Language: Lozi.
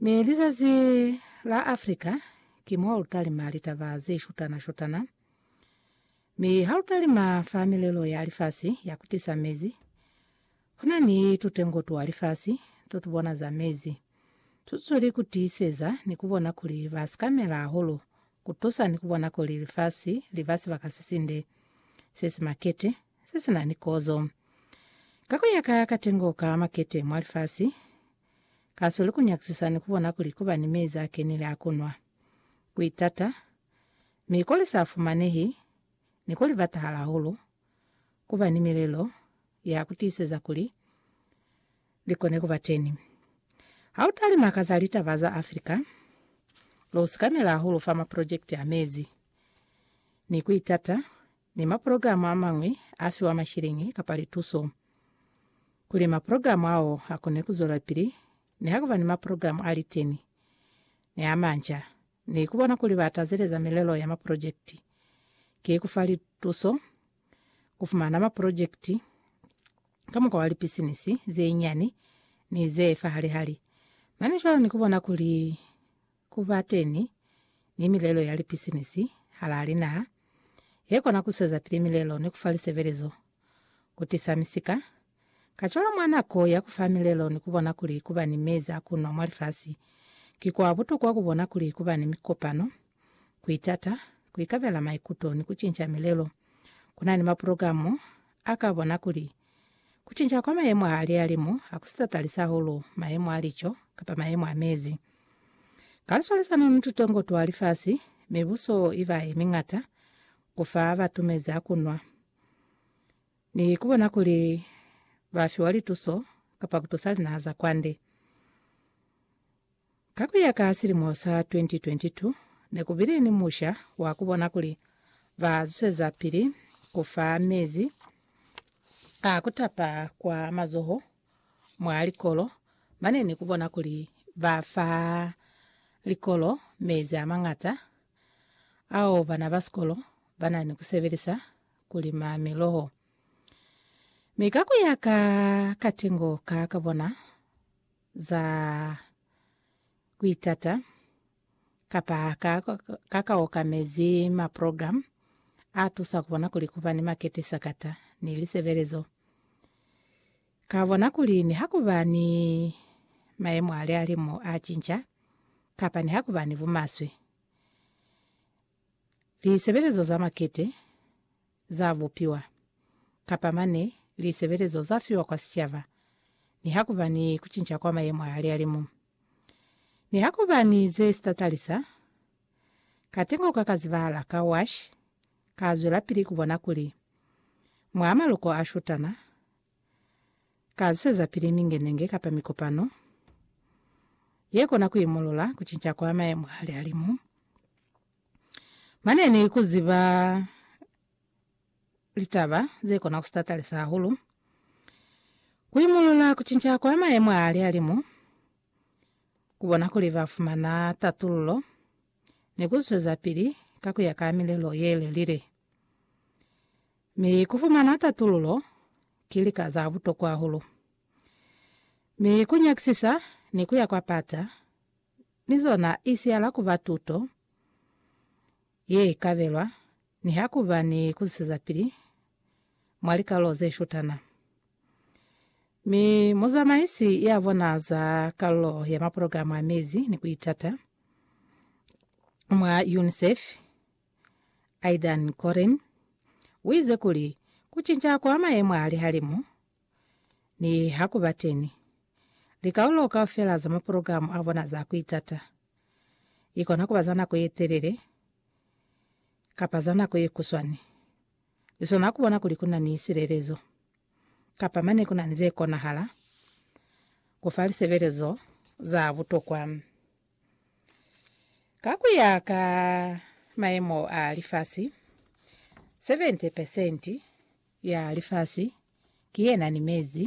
Mi lizazi la Africa ki mo lu talima litaba ze shutana-shutana. Mi ha lu talima fa milelo ya lifasi ya ku tisa mezi, ku na ni tutengo twa lifasi to tu bona za mezi. Tu zweli ku tiiseza ni ku bona kuli ba sikamela hahulu ku tusa ni ku bona kuli lifasi li ba sibaka se sinde, se si makete, se si na ni kozo. Ka ku ya ka katengo ka makete mwa lifasi, Kasweli ku nyakisisa ni ku bona kuli ku ba ni mezi a kenile a ku nwa, ku itata, mi ko li sa fumanehi ni ko li batahala hahulu, ku ba ni milelo ya ku tiiseza kuli li kone ku ba teñi. Ha u talima ka za litaba za Africa, lu sikamela hahulu fa maprojekiti a mezi ni ku itata ni maprograma a mañwi a fiwa mashiliñi kapa lituso. Kuli maprograma ao a kone ku zwelapili, ne ha ku ba ni maprograma a liteni ni a manca, ni ku bona kuli ba tazeleza milelo ya maprojekiti, ki ku fa lituso ku fumana maprojekiti ka mukwa wa lipisinisi ze nyani ni ze fahalihali. Mane cwalo ni ku bona kuli Ku ba teñi ni milelo ya lipisinisi halaa linaha ye kona ku swezapili milelo ni ku fa lisebelezo, ku tisa misika. Kacwalo mwa nako ya ku fa milelo ni ku bona kuli ku ba ni mezi a ku nwa mwa lifasi, ki kwa butokwa ku bona kuli ku ba ni mikopano, ku itata, ku ikabela maikuto ni ku cinca milelo. Ku na ni maprogramo A ka bona kuli, ku cinca kwa mayemo a lihalimu ha ku si tatalisi hahulu mayemo a lico kapa mayemo a mezi. Ka luswalisano ni tutongo twa lifasi, mibuso i ba ye miñata ku fa batu mezi a ku nwa, ni ku bona kuli ba fiwa lituso kapa ku tusa linaha za kwande. Ka ku ya ka silimo sa 2022, ne ku bile ni musha wa ku bona kuli ba zusezapili ku fa mezi a ku tapa kwa mazoho mwa likolo mane ni ku bona kuli ba fa likolo mezi a mañata ao bana ba sikolo ba na ni ku sebelisa ku lima miloho. Mi ka ku ya ka katengo ka ka bona, za kuitata kapa ka, ka ka okamezi maprogramu a tusa kubona kuli kuba ni makete sakata ni lisebelezo. Ka bona kuli ni hakuba ni mayemo a lihalimu a cinca kapa ni hakuba ni bumaswe, lisebelezo za makete za bupiwa, kapa mane lisebelezo za fiwa kwa sicaba, nihakuba ni kucinca kwa mayemo a hali-halimu. Nihakuba ni ze sitatalisa, katengo ka ka zibahala ka wash ka zwelapili ku bona kuli, mwa maloko a shutana, ka zwisezapili mingenenge kapa mikopano ye kona ku imulula kucinca kwa mayemo a hali-halimu Mane ni ku ziba litaba ze kona ku sitatalisa hahulu. Ku imulula ku cinca kwa mayemo a lihalimu, ku bona kuli ba fumana tatululo, ni ku zwezapili ka ku ya ka milelo ye lelile. Mi ku fumana tatululo ki lika za butokwa hahulu. Mi ku nyakisisa ni ku ya kwa pata, ni zona i siyala ku ba tuto ye i kabelwa ni ha ku ba ni ku zwisezapili mwa likalolo ze shutana. Mi muzamaisi ya bona za kalulo ya maprogramu a mezi ni ku itata mwa UNICEF, Aidan Corrine, u ize kuli, Ku cinca kwa mayemo a lihalimu, Nihakubateni, likaulo kaufela za maprogramu a bona za ku itata li kona ku ba za nako ye telele kapa za nako ye kuswani. Li swana ku bona kuli ku na ni silelezo kapa mane ku na ni ze konahala ku fa lisebelezo za butokwa. Ka ku ya ka maemo a lifasi, 70 pesenti ya lifasi ki ye na ni mezi.